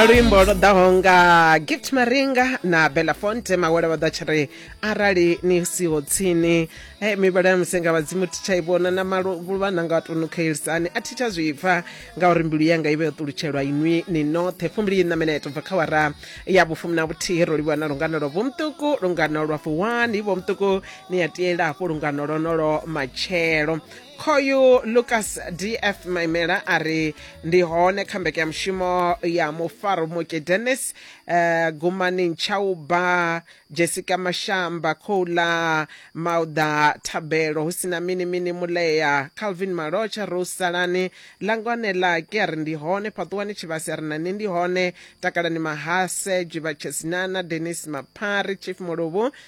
luimbo lwo ḓaho nga gift maringa na belafonte mawele vha ḓa tshi ri arali ni siho tsini e mivhala ya musenga vhadzimu thi tsha i vhona na maluvha na nga tunu khaelisani a thi tsha zwi pfa ngauri mbilu yanga i vhe yo ṱulutshelwa inwi ni noṱhe fumbili ina minete bva kha wara ya vhufumi na vhuthihi ro livhuwa na lungano lwa vhomuṱuku lungano lwa fuwani vhomuṱuku ni a tiela hafho lungano lwonolo matshelo khoyu lucas df maimela a ri ndi hone kha mbekanyamushumo ya mufarumuke dennis uh, gumani ntshauba jessica mashamba khoula mauda thabelo hu sina mini mini mulea calvin malotsha rose salani langwane lake a ri ndi hone fhaṱuwani tshivhasi a ri nani ndi hone takalani mahase jiva chesinana denis maphari chief muluvhu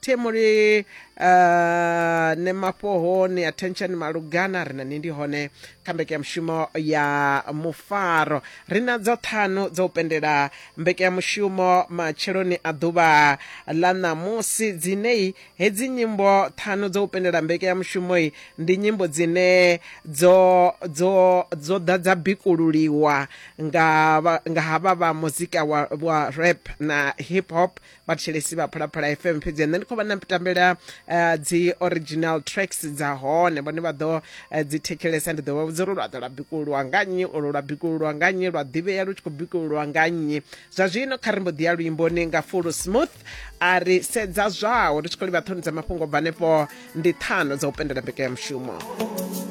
temuli uh, ne mafhoho ni attention malugana ri na ni ndi hone kha mbekanyamushumo ya mufaro ri na dza ṱhanu dza u pendela mbekanyamushumo matsheloni a ḓuvha ḽa ṋamusi dzinei hedzi nyimbo ṱhanu dza u pendela mbekanyamushumoi ndi nyimbo dzine dzo dzo dzo ḓa dza bikululiwa nga vha- nga havha vha muzika wa, wa rap na hip hop vhathetshelesi vha phalaphala fm fhedzi nṋe ndi khou vha na tambela uh, dzi original tracks dza hone vhone vha ḓo uh, dzi thetshelesa ndi ḓo vha vhudza uri lwa ḓo lwa bikululwa nga nnyi olo lwa bikululwa nga nnyi lwa ḓivhea lu tshi khou bikululwa nga nnyi zwa zwino kha ri mbo ḓi ya luimboni nga fulo smooth a ri sedza zwawo ri tshi khou livha ṱhoni dza mafhungo bva hanefho ndi ṱhano dza u pendela mbekanyamushumo